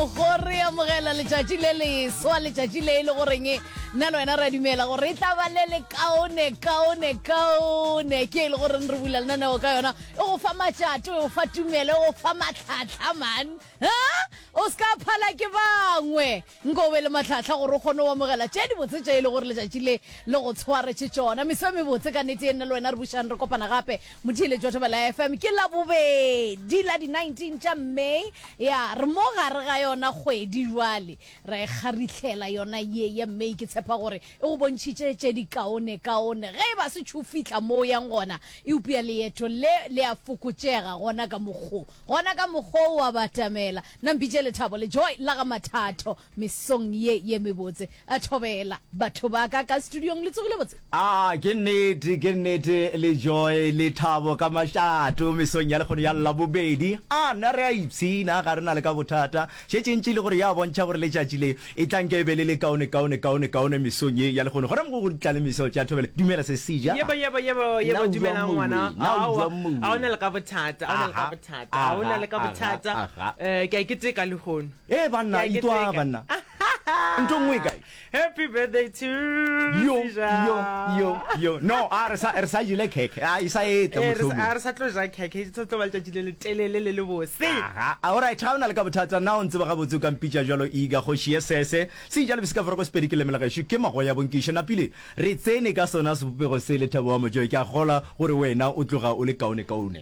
go re amogela letšatši le leswa letšatši le e le goreng nna le wena re a dumela gore e tla ba le le kaone kaone kaone ke e le goreng re bula lenaneo ka yona e go fa matšato e go fa tumelo e go fa matlhatlha man o se ka phala ke bangwe nko o be le matlhatlha gore o kgone go amogela tše dibotse tše e le gore letšatši le le go tshwaretše tšona meso e mebotse ka nete e nna le wena re bušang re kopana gape Motheeletšwa Thobela FM ke Labobedi la di 19 tša May. Ya re mo gare ga yona kgwedi jwale ra e kgarihlela yona ye ya May. Ke tshepa gore e go bontšhitše tše di kaone kaone. Ge e ba se tšhu fihla mo o yang gona, eupša leeto le le a fokotšega gona ka mokgo. Gona ka mokgo o a batamela. Na mpitše Lethabo le Joy la ga Mathatho. Mesong ye ye mebotse. A thobela. Batho ba ka ka studiong le tsogile botse? Aa, ke nnete, ke nnete, le joy, le thabo ka mašato mesong ya lekgono ya Labobedi. Aa, na re a ipshina, ga re na le ka bothata. Šetše ntši e le gore ya bontšha gore letšatši le e tla nke e be le le kaone, kaone, kaone, kaone mesong ye ya lekgono. Gona mogo go tla le meso. Ke a thobela. Dumela, se se ja. Yebo, yebo, yebo, Na yebo, o dumelang jwang, ngwana. moweng? Na o Aowa, jwang, moweng? ga o na le ka bothata, ga o na le ka Aha, bothata, ga o na aha, le ka aha, bothata. aha, aha. Eh, ke a e keteka lehono. Ee banna Ke a itwa keteka. banna. Nto nngwe kae? Happy birthday to Yo Rija. yo yo yo. No, a re sa re sa jile khekhe. A isa etla Eh, re sa- motlhomi. a re sa tlo ja khekhe e tlo ba letšatši le letelele le le bose Aha, a ora ga ona le ka bothata na o ntse ba ga botse o ka mpitša jalo iga go šie sese se jalo bese ka fora go sepedi ke lemela gašo ke mago ya bonkiše napile re tsene ka sona sebopego se le thabo wa mojoe ke a gola gore wena o tloga o le kaone kaone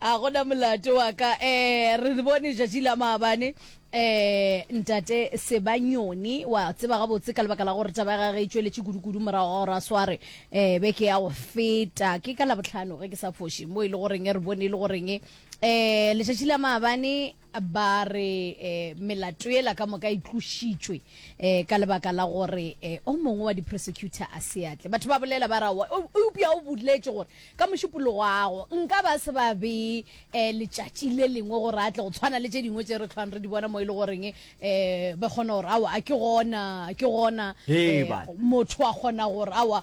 a gona molato wa ka um re bone jatši la maabane um ntate sebanyoni wa tseba gabotse ka lebaka la gore taba ya gage e tšweletše kudu-kudu morago ga gore a sware um beke ya go feta ke ka labotlhano ge ke sa foše mo e le goreng re bone e le goreng um letšatši la maabane Ba re melato yela ka moka e tlošitšwe ka lebaka la gore o mongwe wa di-prosecutor a se atle. Batho ba bolela ba ra, Eupša o boletše gore ka mošupologo ago nka ba se ba bee letšatši le lengwe gore a tle, go tshwana le tše dingwe tše re hlwang re di bona mo e le goreng ba kgona gore aowa a ke gona, a ke gona motho a kgona gore aowa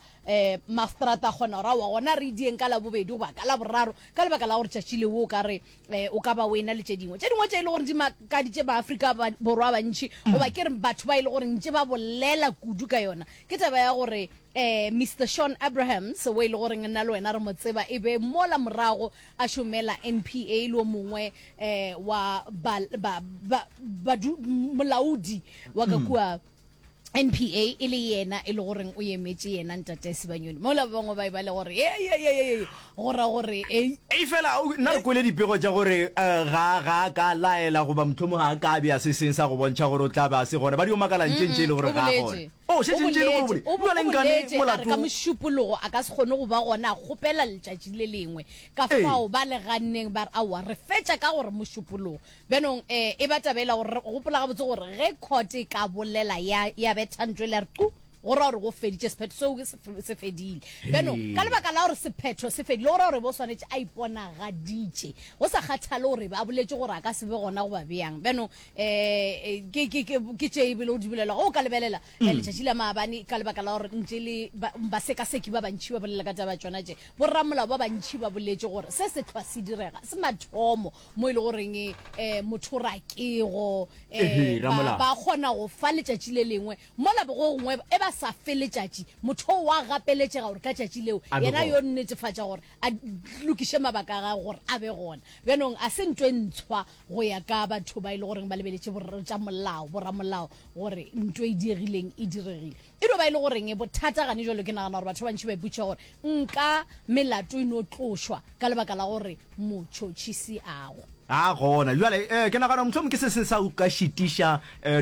mastrata a kgona gore aowa gona re e dieng ka Labobedi goba ka Laboraro ka lebaka la gore tšatši leo o ka re um o ka ba o ena le tše dingwe tše dingwe tše e le gore di makaditše baafrika borwa bantšhi mm. goba ke re batho ba e le gore ntše ba bolela kudu ka yona ke taba ya gore um eh, mr sean abrahams o e le goreng nna le wena re mo tseba e be mola morago a šomela n p a e le o mongwe um wa molaodi wa ka mm. kua NPA e le yena e le goreng o emetše yena ntate Sebanyoni mola ba bangwe ba e ba le gore ye ye ye ye ye go ra gore ei e fela o- nna re kwele dipego tša gore eh, ga ga a ka laela goba mohlomong ga a ka be a se seng sa go bontšha gore o tla be a se gona ba dio makala ntše ntše e le gore ga a gona boletše o šetše ntše e le gore o boletše o bo- o boleng kane boletše a re ka molato mošupologo a ka se kgone go ba gona a kgopela letšatši le lengwe ka Ee. fao ba le ganneng ba re aowa re fetša ka gore mošupologo Bjanong e, e ba taba ela gore re gopola gabotse gore ge court e ka bolela ya, ya betha ntlo e le ya re qu, go ra gore go feditše sephetho seo ke se, se fedile. Bjanong ka lebaka la gore sephetho se fedile, go ra gore bo swanetše a iponagaditše, go sa kgathale gore a boletše gore a ka se be gona goba bjang. Bjanong e, e, ke, ke, ke, ke tše e bile o di bolela. Ge o ka lebelela e, letšatši la maabane ka lebaka la gore ntše le ba, basekaseki ba bantši ba bolela ka taba ya tšona tše, bo ramolao ba bantši ba boletše gore se sehlwa se direga se mathomo mo e le goreng um motho ra kego um ba kgona go fa letšatši le lengwe mola go gongwe e ba sa fe letšatši motho o wa gapeletšega gore ka tšatši leo yena yo nnetefatša gore a lokiše mabaka a gage gore a be gona bjanong a se nto e ntshwa go ya ka batho ba e le goreng ba lebeletše tša molao boramolao gore nto e diegileng e diregile E no ba e le goreng bothata gane jalo? Ke nagana gore batho ba bantši ba iputša gore nka melato e no tlošwa ka lebaka la gore motšhotšhisi ago. A gona. Bjale, ee, ke nagana gore mohlomong ke se se sa o ka šitiša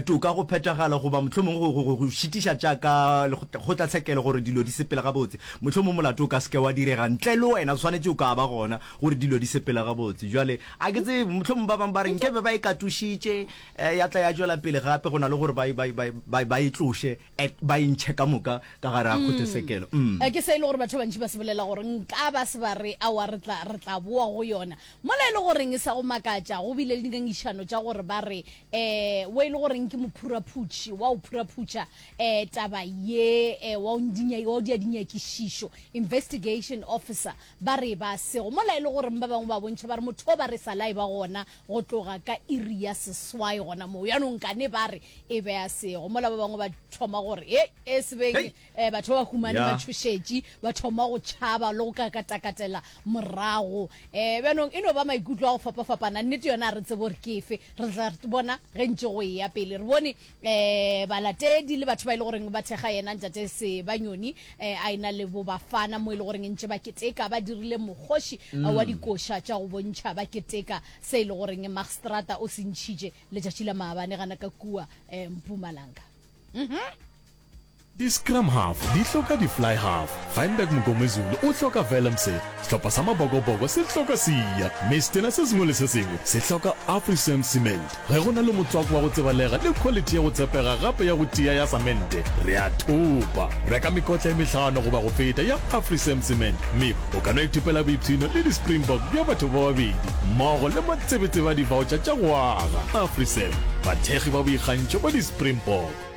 toka go phethagala goba mohlomong go, go, go, go šitiša tša ka kgotlatshekelo gore dilo di sepele gabotse. Mohlomong molato o ka se ke wa direga ntle le wena, o swanetše o ka ba gona gore dilo di sepele gabotse. Bjale, a ke tsebe, mohlomong ba bangwe ba re nke be ba e katošitše, Ya tla ya tšwela pele gape go na le gore ba, ba, ba, ba, ba e tloše, e, ba e ntšhe ka moka ka gare ga kgotesekelo. Mm. Eh, Ke se e le gore batho ba bantši ba se bolela gore nka ba se ba re, Aowa, re tla, re tla boa go yona. Mola e le goreng e sa go makatša, go bile le dingangišano tša gore ba re, eh, wo e le goreng ke mophuraphutši, wa o phuraphutša, eh, taba ye, eh, wa o ndinya, wa o dia dinyakišišo, investigation officer, Ba re ba sego mola e le goreng ba bangwe ba bontšha ba re motho o ba re sa la e ba gona go tloga ka iri ya seswai gona moo. Yanong kane ba re e be a sego mola ba bangwe ba thoma gore he e se beng Hei! eh, batho ba ba humane ba Yeah. tšhošetše ba thoma go tšhaba le go kakatakatela morago. Eh, bjanong e no ba maikutlo a go fapafapana. Nnete yona ga re tsebe gore ke efe, re tla re bona ge ntše go eya pele. Re bone um balatedi le batho ba e le goreng ba thekga yena Ntate Sebanyoni um a ena le bo Bafana mo e le goreng ntše ba keteka ba dirile mokgoši wa dikoša tša go bontšha ba keteka se e le goreng Magstrata o se ntšhitše letšatši la maabane gana ka kua um Mpumalanga. Di-scrum half di hloka di-fly half. Feinberg Mngomezulu o hloka Vellemse. Sehlopha sa Mabokoboko se hloka Siya Mistena. Se sengwe le se sengwe se hloka Afrisame Cement. Ge go na le motswako wa go tsebalega le khwalithi ya go tshepega gape ya go tia ya samente, re a thopa. Reka mekotla e mehlano goba go feta ya Afrisame Cement mme o ka no ithopela boipshino le di-Springbok bja batho ba babedi mmogo le matsebetsebe a divaotšha tša go aga. Afrisame, bathekgi ba boikgantšho ba di-Springbok.